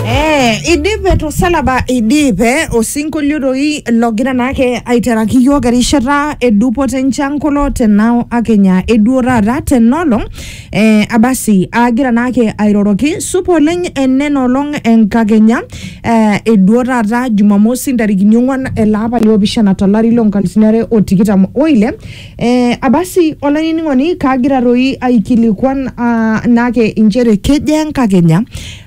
Eh, idipe tosalaba idipe osinkolio doi logira naake aiteraki iyiok erishata edupoto enchan kulo tenao akenya eduo taata tenolong eh, abasi agira naake airoroki supa oleng enenolong enkakenya eh, eduo taata jumamosi ntarikini ong'uan ele apa liopishana tolari lonkalisini are otikitam oile Eh, abasi olainining'oni kaagira toi aikilikuan uh, naake inchere kejaa enkakenya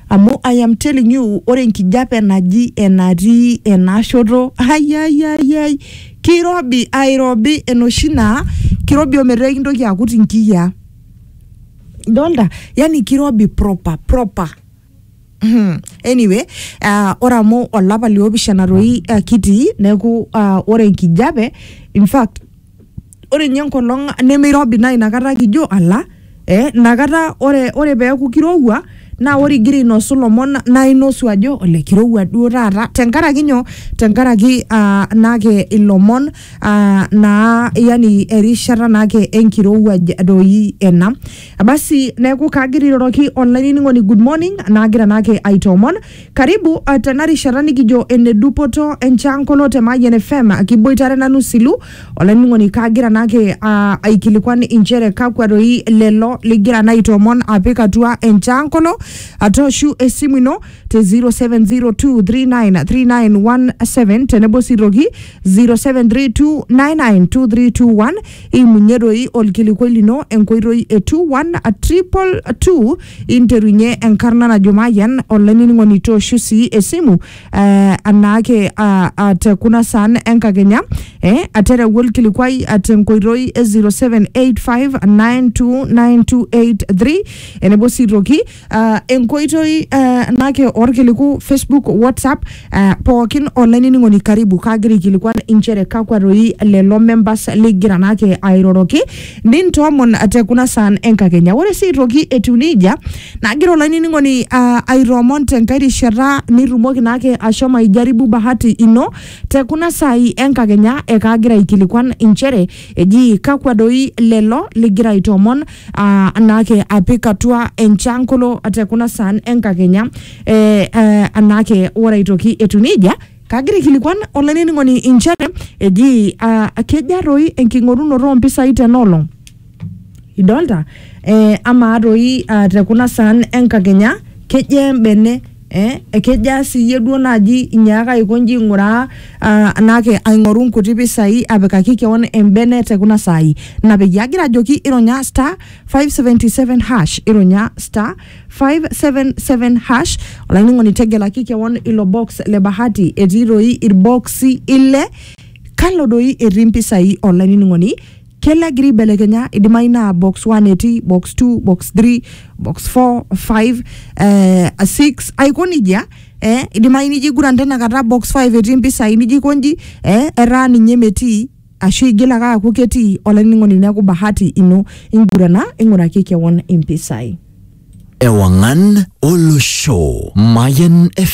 amu I am telling you ore enkijape naji enatii enashoto ayayayay kirobi airobi enoshi naa kirobi ometaa ekintoki akut inkiyiaa idolta yani kirobi proper proper Hmm, anyway uh, ore amu olapa liopishana toi uh, kitii neeku uh, ore enkijape in fact ore ninye enkolong nemeirobi naa inakata kijo ala eh, inakata ore, ore peeku kirowua naa ore igira ainosu lomon naa inosu ajo ole kirowua duo taata tenkaraki nyoo tenkaraki uh, naake ilomon uh, naa yani erishata naake enkirowuaj doi ena basi neeku kaagira airoroki olainining'oni good morning naagira naake aitoomon karibu uh, tena rishata nikijo ene dupoto enchankolo te Mayian FM kiboitare nanu silu olainining'oni kaagira naake uh, aikilikuan inchere kakwa doi lelo ligira naa aitoomon apik atua enchankolo atooshu esimu ino te 0702393917 tenebo sii toki 0732992321 Imunye doi olkilikuai lino enkoitoi e 21222 interunye enkarna najo Mayian olainining'oni tooshu sii esimu eh, anaake ah, ah, te kuna saan enkakenya eh, atereu olkilikuai ah, tenkoitoi e 0785929283 enebo sii toki uh, enkoitoi uh, nake orkiliku facebook whatsapp uh, pookin olainining'oni karibu kaagira aikilikuan inchere kakwa toi lelo members ligira nake airoroki nintoomon te kuna saan enkakenya ore sii aitoki etiu nejia nagira olainining'oni uh, aitoomon tenkae rishata nitumoki nake ashomo aijaribu bahati ino te kuna saai enkakenya ekaagira aikilikuan inchere eji kakwa doi lelo ligira aitoomon aa anake apik atua enchankolo te kuna saan enkakenya eh, eh, anake ore aitoki etu nejia kagira aikilikuan olainining'oni inchere eji ah, keja toi enking'orunoto oompisai tenaolong idolta eh, amaa toi ah, te kuna saan enkakenya keja embene Eh, ekejaa siyie duo naaji inyaaka aiko nji ing'uraa ah, naake aing'oru nkuti pisai apikaki keon embene te kuna saai ina peyie agira ajoki ironya star 577 hash ironya star 577 hash olainining'oni tegelaki keon ilo box le bahati etii doi irboksi ile kalo doi etii mpisai olainining'oni kelo egira aibelekenya idimayu naa box 1 etii box 2 box 3 box 4 5 eh, 6 aiko nejia eh, idimayu nijo aiguran tenakata box 5 etii mpisai nijo aikonji eh, etaa ninye metii ashu igil ake aaku ketii olainining'oni neeku bahati ino ingurana ing'uraki kewon impisai Ewangan Olosho. Mayan FM.